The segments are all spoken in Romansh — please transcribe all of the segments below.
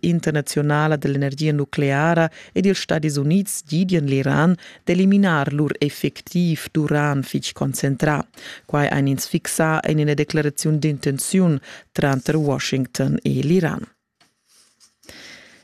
internazionala dell'energia nucleara ed ils Stadis Unids gidian l'Iran d'eliminar lur effectiv d'uran fitg concentrà. Quai ein ins fixà en ina declaraziun d'intenziun tranter Washington e l'Iran.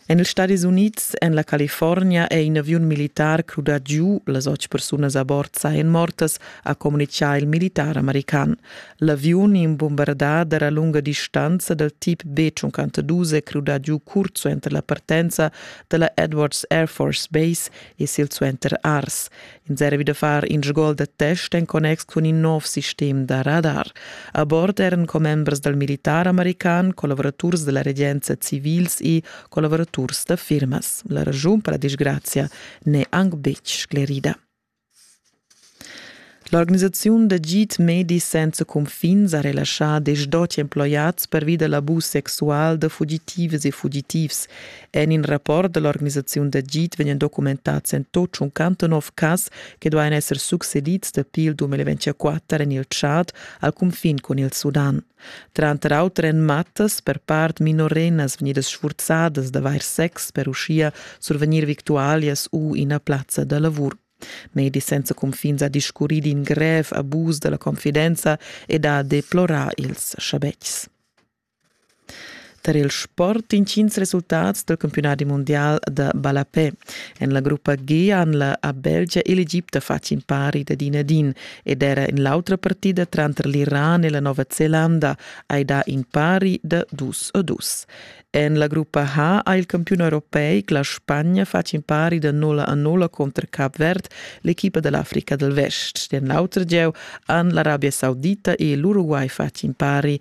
En ils Stadis Unids, en la California, è in aviun militar crudà giu. Las otg persunas a bord sajan mortas, ha communitgà il militar american. L'aviun imbombardà a lunga distanza dal tip B-52 è crudà giu sursuenter la partenza da la Edwards Air Force Base e silsuenter Ars. Ins era da far in sgol da test en connex cun in nov sistem da radar. A bord eran commembers dal militar american, collaboraturs da la regenza civils e collaboraturs da firmas. La ragiun per la disgrazia n'è anc betg sclerida. L'organisaziun d'agid medi senza cunfin sa relaschà desch-dotg emploiads pervi da l'abus sexual da fugitivas e fugitivs. En in rapport da l'organisaziun d'agid vegnan documentads en tut 59 cas che duain esser succedids dapi il 2024 en il Tschad al cunfin cun il Sudan. Tranter auter èn mattas per part minorennas vegnidas sfurzadas d'avair sex per uschia survegnir victualias u ina plazza da lavur. Medis senza cunfins ha discurrì d'in grev abus da la confidenza ed ha deplorà ils schabetgs. tar il sport intgins resultats del campionati mondial da ballapè. En la gruppa G han la a Belgia e l'Egipte fatg impari da din a din ed era in l'autra partida tranter l'Iran e la Nova Zelanda hai da impari da dus a dus. En la gruppa H ha il campion europeic la Spagna fatg impari da 0 a 0 contro Cap Verd, l'equipa dell'Africa del Vest. Den l'auter gieu han l'Arabia Saudita e l'Uruguay fatg impari